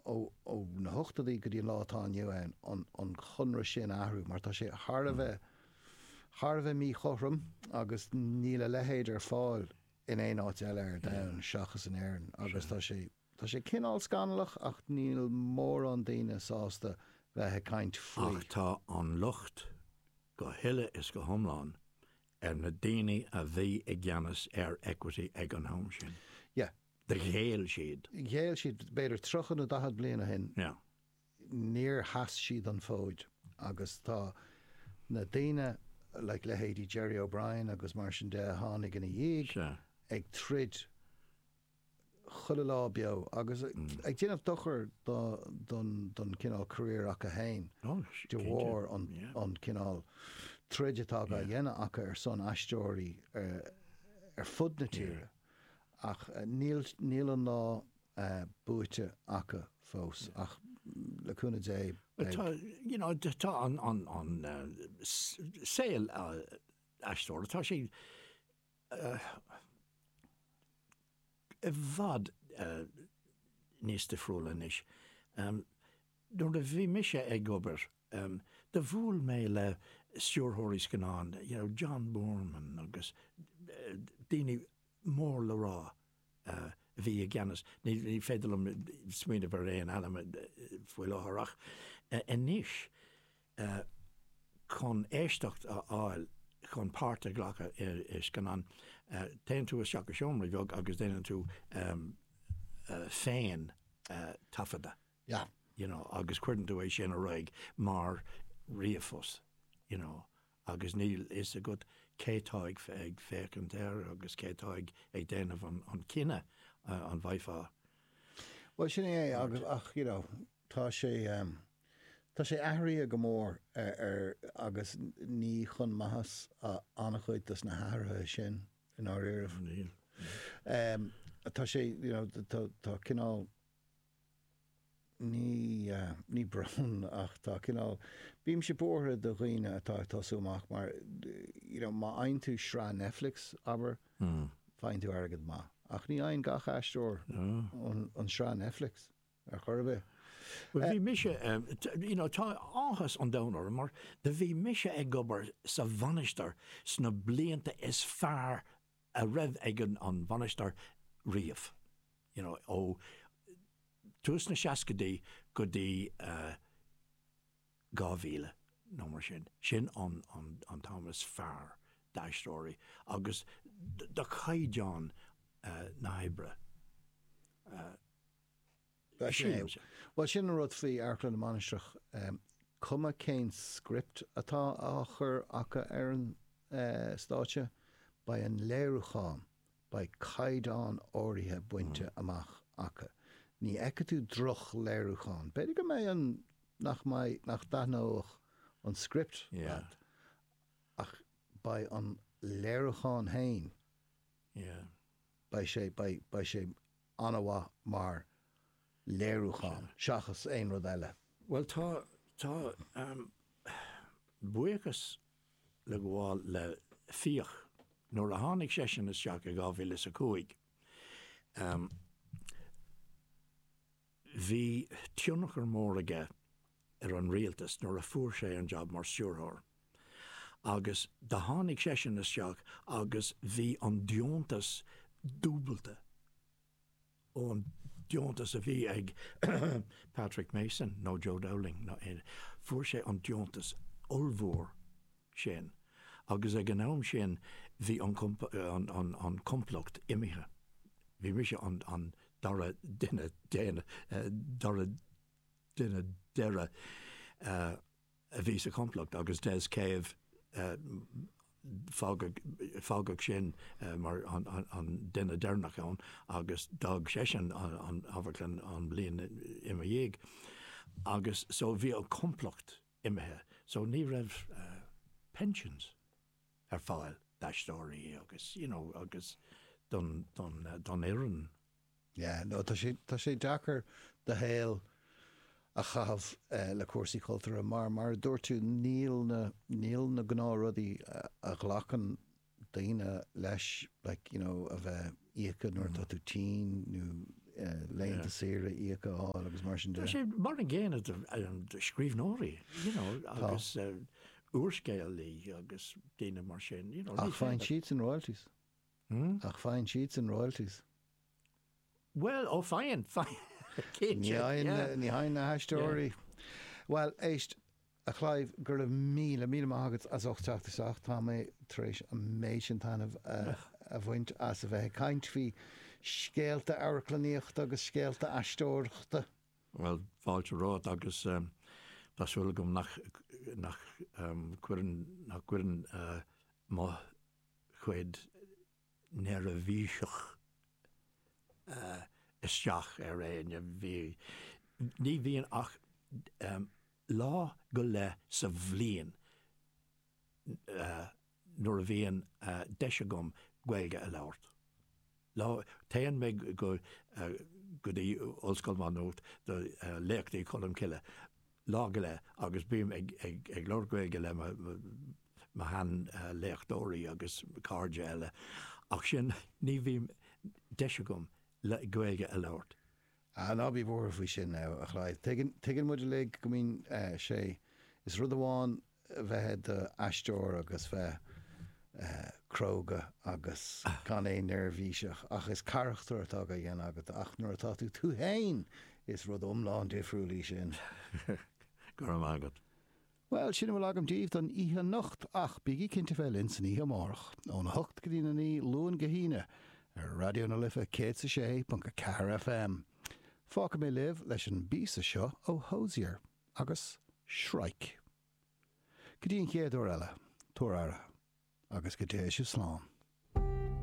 ó na hochtadaí go dtí an lá atá inniu ann, an conradh sin a athrú mar tá sé thar a bheith, thar a bheith míchothrom agus níl a leithéid ar fáil in aon áit eile ar domhan seachas in Éirinn agus tá sé, tá sé cineál scannalach ach níl mórán daoine sásta bheith ag caint faoi. Ach tá an locht go huile is go hiomlán ar na daoine a bhí i gceannas ar Equity ag an am sin. Yeah, Ghéill siad. Ghéill siad, b'fhéidir tríocha nó daichead bliain ó shin. Níor sheas siad an fód agus tá na daoine, like leithéidí Gerry O'Brien agus mar sin de a tháinig ina dhiaidh, ag troid chuile lá beo agus ag déanamh dochar don cineál career acu fhéin de bharr an cineál troid atá á dhéanamh acu ar son aisteoirí ar fud na tíre. ach níl an lá buaite acu fós ach le cúnamh Dé beidh. you know tá an an an saol aisteora tá sé i bhfad níos difriúla anois. nuair a bhí mise ag obair em do bhuail mé le stiúrthóirí scannán you know John Boorman agus daoine mór le rá a bhí i gceannas níl ní féidir liom smaoineamh ar aon ainm faoi láthair ach anois eh chun éisteacht a fháil chun páirt a ghlacadh i scannán téann tú isteach i seomra bheag agus déanann tú em féin taifeadadh. yeah, you know, agus cuireann tú é sin ar aghaidh mar ríomhphost, you know, agus níl fhios agat cé tá ag féachaint air agus cé tá ag déanamh an cinneadh an bhfaighfeá. Bhuel sin é agus ach you know tá sé um, tá sé athraithe go mór ar, ar agus ní chun maitheas an-chuid dos na hathruithe sin i ndáiríre. Níl. Um, tá sé you know, tá cineál ní, ní brón ach tá cineál, bímse buartha do dhaoine atá ag tosú amach mar you know má fhaigheann tú sraith Netflix, abair, faigheann tú airgead maith ach ní fhaigheann gach aisteoir an sraith Netflix ar chor ar bith. Bhuel bhí mise you know tá áthas an domhain orm mar do bhí mise ag obair sa Mhainistir sna blianta is fearr a raibh ag an Mhainistir riamh. You know, ó tús na seascaidí go dtí 2000 nó mar sin, sin an t-am is fearr d'aisteoirí agus do chaighdeán na hoibre. Sin é. Bhuel, sin an rud faoi Amharclann na Mainistreach, cuma cén script atá á chur acu ar an stáitse, beidh an léiriúchán, beidh caighdeán áirithe bainte amach acu. Ní fheicfidh tú droch-léiriúchán. B'fhéidir go mbeidh an, nach mbeidh, nach dtaitneoidh an script leat, ach beidh an léiriúchán fhéin, beidh sé, beidh, beidh sé an-mhaith mar léiriúchán seachas aon rud eile. Bhuel tá, tá buíochas le gabháil le Fiach. Nuair a tháinig seisean isteach i dhá mhíle is a cúig, bhí tionchar mór aige ar an rialtas nuair a fuair sé an jab mar stiúrthóir agus do tháinig seisean isteach agus bhí an deontas dúbailte ón deontas a bhí ag Patrick Mason nó Joe Dowling nó aon, fuair sé an deontas ollmhór sin agus ag an am sin bhí an an complacht imithe, bhí mise an dara duine déanach, dara duine deireadh a bhí sa chomplacht agus Des Cave fágadh sin mar an duine deireanach ann agus d'fhág seisean an Amharclann an bhliain ina dhiaidh agus so bhí an complacht imithe so ní raibh pensions ar fáil d'aisteoirí agus you know agus don fhoireann. Yeah, no, tá sé, tá sé deacair do shaol a chaitheamh le cúrsaí cultúrtha mar, mar a dúirt tú, níl na, níl na gnáth rudaí a ghlacann daoine leis, like, you know, a bheith íoctha nuair atá tú tinn nó laethanta saoire íoctha a fháil agus mar sin de. Tá sé mar an gcéanna do scríbhneoirí, you know, agus úrscéalaí agus daoine mar sin, you know. Ach faigheann siadsan royalties? Hmm? Ach faigheann siadsan royalties. Bhuel, ó faigheann, faigheann. Ní fhaigheann, ní fhaigheann na haisteoirí. Bhuel, éist, a Chlive, go raibh míle, míle maith agat as ucht teacht isteach. Tá mé tar éis an méid sin taitneamh a bhaint as a bheith ag caint faoi scéalta amharclannaíochta agus scéalta aisteoireachta. Bhuel, fáilte romhat agus tá súil agam nach cuireann mo chuid neirbhíseach. Isteach ar éinne. Bhí, ní bhíonn ach lá go leith sa bhliain nuair a bhíonn deis agam Gaeilge a labhairt. Lá, téann muid go dtí Ollscoil Mhá Nuat do Léachtaí Cholm Cille. lá go leith agus bím ag labhairt Gaeilge le mo sheanléachtóirí agus cairde eile ach sin ní bhíonn deis agam Gaeilge a labhairt. Ná bí buartha faoi sin, a Chlaíomh. Tuigeann muid uilig go mbíonn sé. Is rud amháin bheith i do aisteoir agus bheith cróga agus gan aon neirbhís ach is carachtar atá á dhéanamh agat ach nuair atá tú tú fhéin is rud iomlán difriúil é sin. Go raibh maith agat. Bhuel, sin a bhfuil agam daoibh don oíche anocht ach bígí cinnte bheith linn san oíche amárach, óna a hocht go dtí a naoi, Luan go hAoine, ar Raidió na Life 106.4 FM. Fágfaidh mé libh leis an bpíosa seo ó Hozier. agus Shrike. Go dtí an chéad uair eile, tabhair aire, agus go dté sibh slán.